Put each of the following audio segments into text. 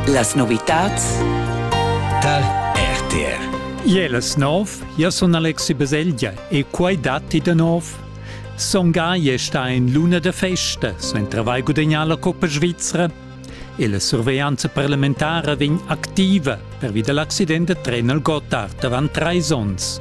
Las novitads tar RTR. Iel es nov, ja sun Alexi Baselgia e quai datti da nov. Son Gai è sta in luna da festa, sun travai gudagnà la Coppa Svizzera e la surveglianza parlamentara vegn activa pervi da l'accident da tren al Gotthard avant trais onns.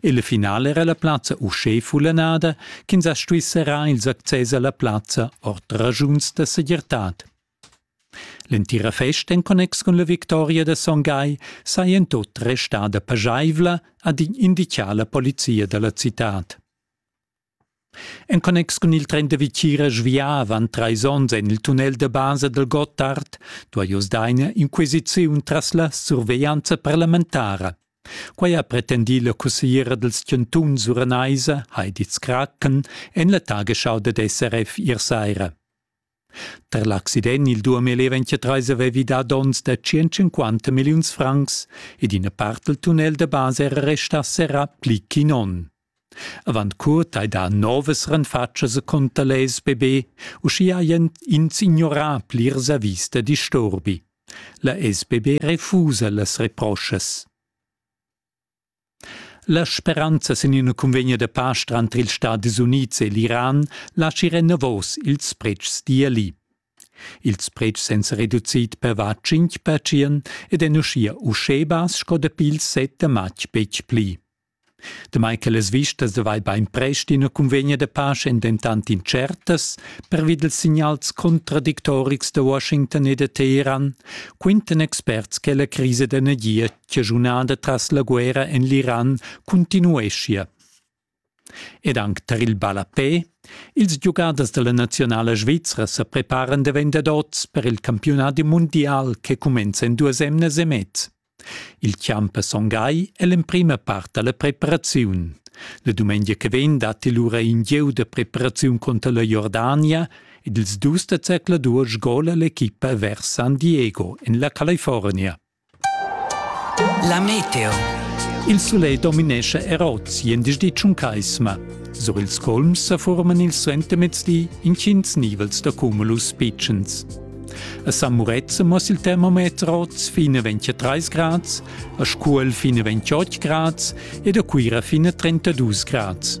Il final era la plazza uschè fullanada ch'ins ha stuì serrar ils access a la plazza ord raschuns da segirtad. L'entira festa en connex cun la victoria da Son Gai saja en tot restada paschaivla, ha inditgà la polizia da la citad. En connex cun il tren da vitgira sviavan trais onns en il tunnel da basa dal Gottard duai oz daina inquisiziun tras la surveglianza parlamentara. Quai ha pretendì la cussigliera dals chantuns uranaisa Heidi Skraken en la tagesschau dad SRF ier saira. Per l'accident il Duamel ventia treis avevi dà donns da tschient milliuns francs ed ina part del tunnel da basa era restà serrà pli ch'in onn. Avant curt hai dà novas renfatschas conter l'SBB, uschia hajan ins ignorà plirs avis da disturbi. La SBB refusa las reproschas. La speranza sin ina cunvegna da pasch tranter ils Stadis Unids e l'Iran laschi renavos ils pretschs d'ieli. Ils pretschs èn sa reducid per var 5 percent ed èn uschia uschè bass sco dapi il 7 da matg betg pli. Damai che las vistas da vai bainprest ina cunvegna da pace èn dentant incertas pervi dals signals contradictorics da Washington e da Teheran, quintan experts che la crisa d'energia chaschunada tras la guerra en l'Iran continueschia. Ed anc tar il ballapè, ils giugaders da la nazionala svizra sa preparan da vendadots per il campiunadi mundial che cumenza en duas emnas e mez. Il champ a Son Gai è l'emprima part da la preparaziun. La dumengia che vegn datti lura in gieu da preparaziun conter la Jordania ed ils dus da zercladur sgola l'equipa vers San Diego en la California. La meteo. Il sulegl dominescha er oz jendischdi tschuncaisma. Sur ils colms sa forman il suentermezdi intgins nivels da cumulus pitschens. A San Murezza mos il termometer oz fine 23 grads, a Scuol fine 28 grads ed a Cuira fine 32 grads.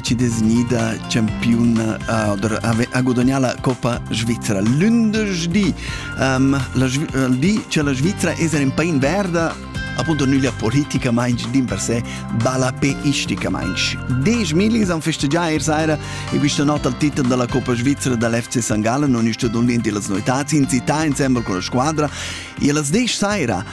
ci designida campiona ha gudagnà la Coppa Svizra lunderdi. Um, la, il di che la Svizra è in pain verda appunto nüglia politicamaing din per se balla pe isticamaing. Desch milis han festeggià ier saira e questa nota al titel della Coppa Svizzera dall'FC St. Gallen non ist und las noitads in città insieme con la squadra e las desch saira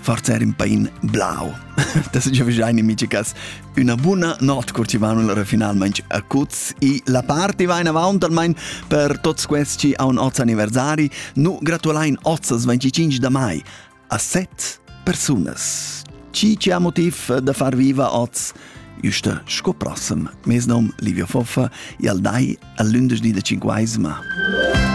forza era un pain blau. Das ist ja wahrscheinlich eine Mitschicas una buona notte, kurzi vanul finalmente a Cuz e la party va in avanti almeno per tutti questi a un oz anniversari. Nu gratulain oz 25 da mai a set personas. Ci c'è motiv da far viva oz? Juste sco prossem. Mes nom Livio Foffa e al dai a lündersdi da cinquaisma.